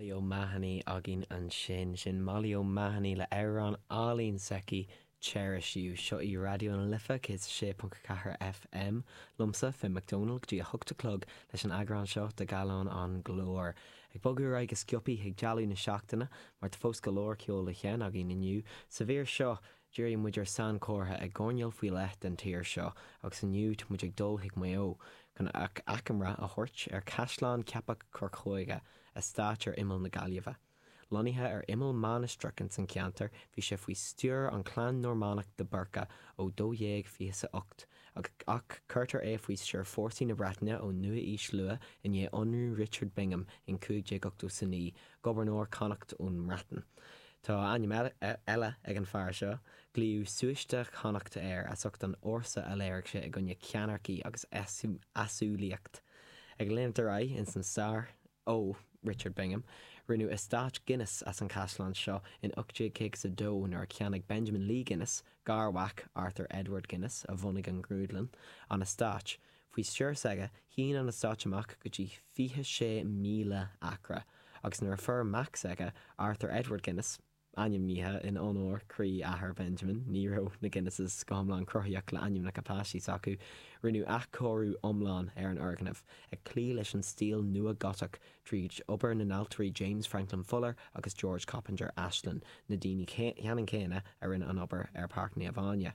Molly O'Mahony againn ansin. Sin Molly O'Mahony le amhrán álainn s'aici, Cherish You. Seo í Raidió na Life 106.4 FM. Liomsa, Finn McDonald, go dtí a hocht a chlog leis an eagrán seo de Gallán an Ghlóir. Ag bogadh ar aghaidh go sciobtha chuig dála na seachtaine, mar tá fós go leor ceol le seinm againn inniu. Sa mhír seo, Díreoidh muid ar sainchomhartha i gcoirnéal faoi leith den tír seo agus inniu tá muid ag dul chuig Maigh Eo chun achoimre a thabhairt ar chaisleán Cheapach Corcóige, eastát ar imeall na Gaillimhe. Lonnaithe ar imeall mainistreach san an cheantar bhí sé faoi stiúir an chlann Normánach de Burca ó 1228 ach cuirtear é faoi stiúir fórsaí na Breataine ón nua-aois luath i ndiaidh ionradh Richard Bingham in 1589 Gobharnóir Connacht ón mBreatain. Tá ainm eile ag an fear seo, glaodh Súiste Chonnacht air as ucht an fhórsa a léirigh sé i gcoinne ceannairce agus easumhlaíocht. Ag leanacht ar aghaidh ins an stair, ó, Richard Bingham, rinneadh eastáit Guinness as an chaisleán seo in 1852 nuair a cheannaigh Benjamin Lee Guinness, garmhac Arthur Edward Guinness a bhunaigh an ghrúdlann, an eastáit. Faoi stiúir s'aige, shín an eastáit amach go dtí 26,000 acra, agus nuair a fuair mac s'aige, Arthur Edward Guinness, ainmnithe in onóir do athair Benjamin, ní raibh na Guinnesses go hiomlán cruthaíoch le ainmneacha páistí s'acu, rinneadh athchóiriú iomlán ar an fhoirgneamh, ag cloí leis an stíl Nua-Ghotach, tríd obair na n-ailtirí James Franklin Fuller agus George Coppinger Ashlin, na daoine ceannann céanna a rinne an obair ar Páirc Naomh Áine.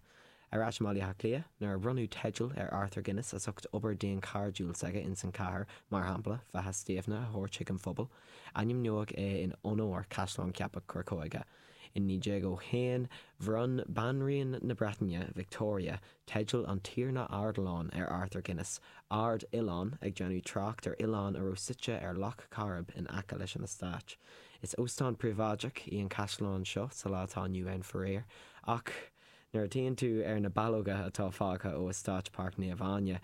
Ar ais i mBaile Átha Cliath, nuair a bhronnadh teideal ar Arthur Guinness as ucht obair dhaonchairdiúil s'aige ins an chathair, mar shampla, Faiche Stiabhna a thabhairt chuig an phobal, ainmniódh é in onóir Chaisleán Cheapach Corcóige. In 1901, bhronn Banríon na Breataine, Victoria, teideal an Tiarna Ardilaun ar Arthur Guinness, Ard Oileán, ag déanamh trácht ar oileán a raibh suite ar Loch Coirib in aice leis an eastáit. Is óstán príobháideach í an caisleán seo sa lá atá inniu ann, faraor, ach, Nuair a fhéachann tú ar na ballóga atá fágtha ó eastáit Páirc Naomh Áine,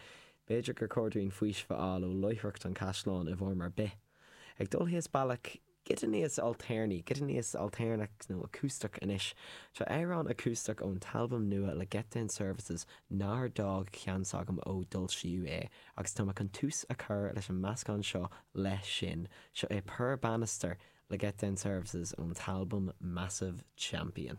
b'fhéidir gur chóir dúinn faoiseamh a fháil ó láithreacht an chaisleáin i bhfoirm ar bith. Ag dul síos bealach. Cuid níos ailtéarnaí, cuid níos ailtéarnach nó Acústach Anois, seo amhrán acústach ón t-albam nua le Get Down Services nár d'fhág ceann s'agam ó d'fhoilsíodh é agus tá mé chun tús a chur leis an meascán seo leis sin. Seo é Poor Bannister le Get Down Services ón t-albam Massive Champion.